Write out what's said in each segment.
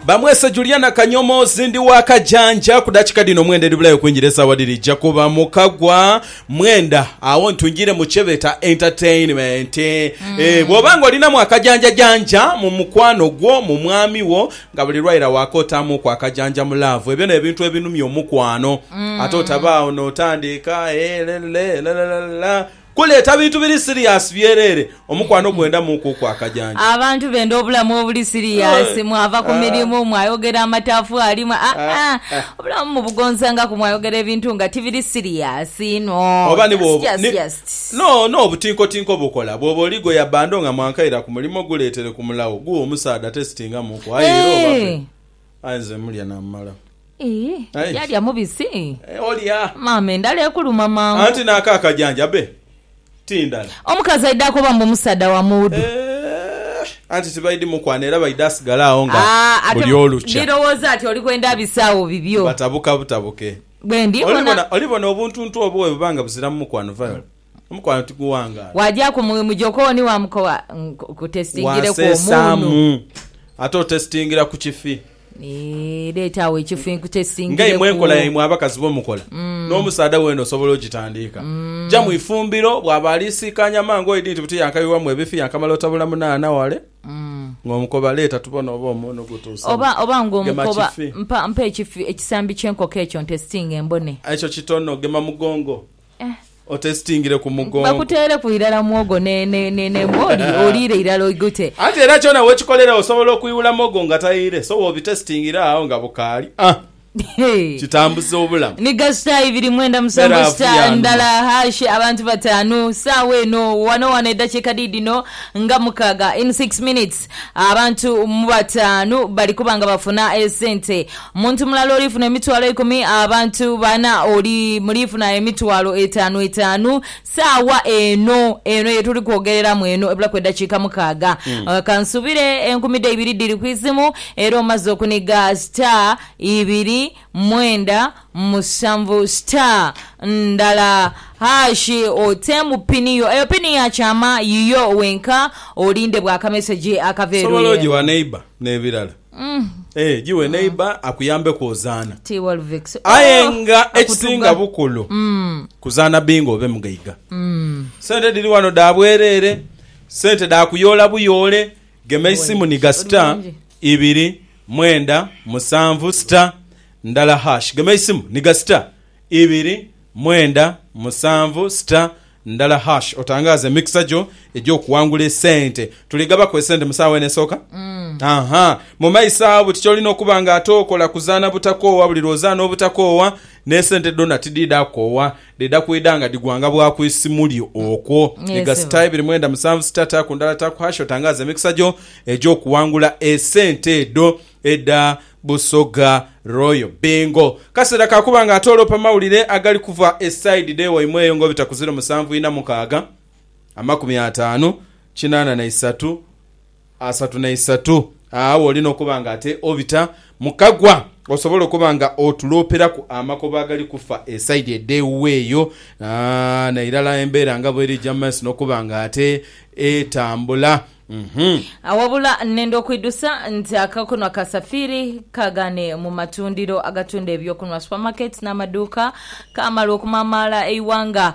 bamwese Juliana Kanyomoozi ndi wa Kajanja ku dakika dhino mwenda edhibulayo okwingira esaawa dhiri ija kuba mu kagwa mwenda awo ntwingire mu kyebeeta entertainment mm. e, bwoba nga olinamu akajanjajanja mu mukwano gwo mu mwami wo nga buli lwaira waka otaamuku akajanja mu laavu ebyo n'ebintu ebinumya omukwano mm. ate otabaawo n'otandiika e, eh, lelele, lelele, lelele, Kuleeta bintu biri siriyaasi byereere, omukwano gwenda muuku okwa kajanja. Abantu benda obulamu obuli siriyaasi, mwava ku mirimu, mwayogera amataffaali, mwa, aa, obulamu mubugonzangaku, mwayogera ebintu nga tibiri siriyaasi inho. Oba ni Just, bw'oba, just, ni, just. no, no, obutinkotinko bukola. Bw'oba oli gwe yabbando nga mwankaira ku mulimo, guleetere ku mulagho, gughe omusaadha atesitinga muuku, aye era obabe. Eeh! Aye nze mulya namala. Ii Aye nze. Yalya mubisi? Eeh olya. Maama endhala ekuluma mangu. Anti nako akajanja abe ti ndhala. Omukazi aidha akoba mbu musaadha wa muwudu. Eeh anti tibaidhi mukwana era baidha asigala agho nga Aa ate buli olukya. ndhirowooza nti oli kwenda bisaawo bibyo. Batabuka butabuke. Bwendi bona. Olibona, olibona obuntuntu obwo bwebuba nga buziramu mukwano, Viola. Omukwano tiguwangaala. Waagyaku mu mu jokooni waamukowa nkutesitingireku omuunu. Wanseesaamu ate otesitingira ku kifi. Eeh, leeta agho ekifi Nga imwe enkola nkutesitingireku. yaimwe abakazi bwe mukola, n'omusaadha weena osobola ogitandiika. Ja mu ifumbiro, bw'aba ali siikaanya mangu oidhi nti buti yankabibwamu ebifi yankamala otabula munaana wale ng'omukoba leeta tubone oba omuunu gutuuse mu. Oba oba Gema ng'omukoba kifi. mpa mpa ekifi ekisambi ky'enkoko ekyo ntesitinge mbone. Ekyo kitono, gema mugongo. Otesitingire ku mugongo. Bakuteereku irala muwogo n'embwa oliire irala oigute. Anti era kyona we kikolera osobola okuiwula muwogo nga taire so w'obitesitingira agho nga bukaali ah! Kitambuza obulamu. Ni gasita ibiri mwenda musanvu sita ndala hash abantu bataanu. Saawa eno wano wano edakiika diidino nga mukaaga in six minutes. Abantu mu bataanu bali kuba nga bafuna esente. Muntu mulala olifuna emitwalo eikumi, abantu bana oli mulifuna emitwalo etaanu etaanu. Saagha eno, eno ye tuli kwogereramu eno, ebulaku edakiika mukaaga, ka nsuubire enkumi dhe ibiri dhiri ku izimu, era omaze okuniga star ibiri. mwenda musanvu star ndala hash oteemu pini yo. Eyo pini ya kyama yiyo wenka olinde bwa kamesegi akava Osobola eruye. ogiwa neighbour nebirala eeh giwe neighbour akuyambeku ozaana. Ti Wolvix Aye ooh nga ekisinga akutuga. bukulu kuzaana bingo obe mugaiga. Sente dhiri wano dha bwerere, sente dha kuyoola buyoole. Gema eisimu ni gasita. Oli mulungi. ibiri mwenda musanvu sita ndala hash gema eisimu ni ga sita ibiri mwenda musanvu sita ndala hash otangaaze emikisa gyo egy'okuwangula esente. Tuli gabaku esente mu saawa eno esooka? Aha. Mu maiso agho buti ky'olina okuba nga ate okola kuzaana butakoowa buli lw'ozaana obutakoowa n'esente dhona tidhidha kukoowa Dhidha kwidha nga dhigwanga bwa ku isimu lyo okwo. Ni gasita ibiri mwenda musanvu sita taaku ndala taaku hash otangaaze emikisa gyo egy'okuwangula esente edho edha Busoga Royal Bingo. Kaseera ka kuba nga ate olopa mawulire agali kuva e sayidi dh'ewaimwe eyo ng'obita ku ziro musanvu ina mukaaga, amakumi ataanu, kinaana na isatu. asatu na isatu. Agho olina okuba nga ate obita mu kagwa osobola okuba nga otulooperaku amakobo agali kufa esaidi edh'ewuwe eyo, na irala embeera nga bw'eri eija mu maiso n'okuba nga ate etambula. Uhmm. Awabula nenda okwidhusa nti akakunwa ka Safiri kagane mu matundiro agatunda eby'okunwa, supermarkets n'amaduuka, kaamalwa okumamaala eighanga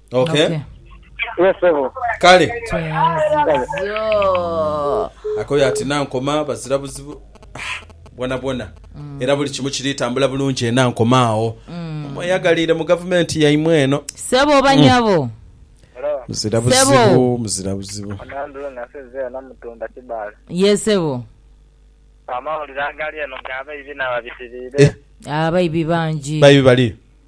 Ok. Yes, sebo. Kale. Kyeyazizo. Akoyo ati nankoma bazira buzibu ah, bwona bwona mm. era buli kimu kiri tambula bulungi enankoma awo mm. mweyagaliire mu gavumenti yaimwe eno sebo oba mm. nyabo muzira buzibu muzira buzibu yesebo amawulire agali eno gabaibi nababitiriire eh. abaibi bangi baibi bali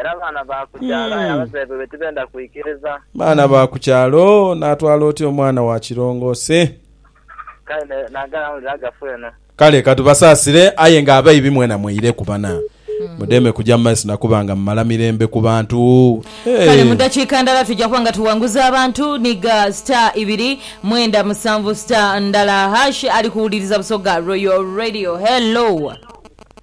Era abaana ba ku kyalo aye abazaire baibwe tibenda kwikiriza. Baana ba ku kyalo, naatwala otya omwana wa kirongoose? Kale ne- naagala awulire agafu eno. Kale ka tubasaasire, aye ng'abaibi mwena mweireku bana. Mudeme kuja mu maiso na kuba nga mumala mirembe ku bantu. Kale mu Hey! dakiika ndala tuja kuba nga tuwanguza abantu. Nhiga star ibiri mwenda musanvu star ndala hash ali kuwuliriza Busoga Royal Radio. Hello.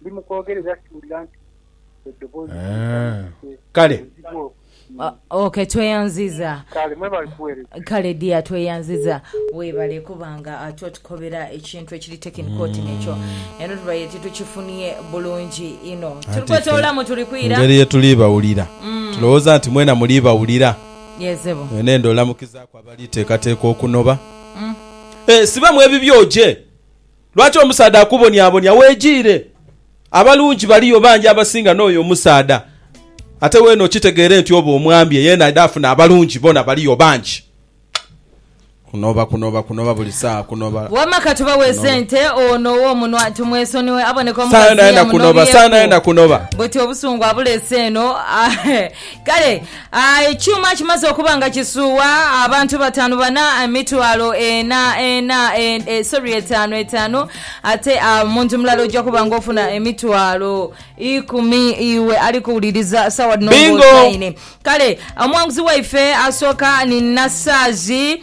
Ndi mu kwogera era siwulira nti eddoboozi limpanikiire. Kale. Obuzibu obwo. O, ok, tweyanziza. Kale, mwebale kuweereza. Kale dear tweyanziza webale kuba nga otukobera ekintu ekiri technical oti nekyo eno tubaire titukifunie bulungi inho tuli kwetolola mwe tuli kwira. Mungeri yetuli bawulira tulowoza nti mwena muli bawulira mwena enda olamukizaku abali tekateka okunoba. Ehh siba mwebibyo oje. Lwaki omusaadha akubonyabonya? Weejiire. Abalungi baliyo bangi abasinga n'oyo omusaadha. Ate weene okitegeere nti oba omwambye ye naidha afune abalungi bona baliyo bangi. Kunoba, kunoba, kunoba buli saawa, kunoba. Wamma ka tubaweese ente ono ow'omunwa tumwesonyiwe aboneka omukazi eyamunobyeku buti obusungu abuleese eno. Kale. A Ekyuma kimaze okuba nga kisuuwa abantu bataanu bana emitwalo ena ena e, sorry etaanu etaanu ate a muntu mulala ojja kuba nga ofuna emitwalo ikumi iwe ali kuwuliriza sawa dhino Bingo! ng'osaine. Kale omwanguzi waife asooka ni Nasaazi.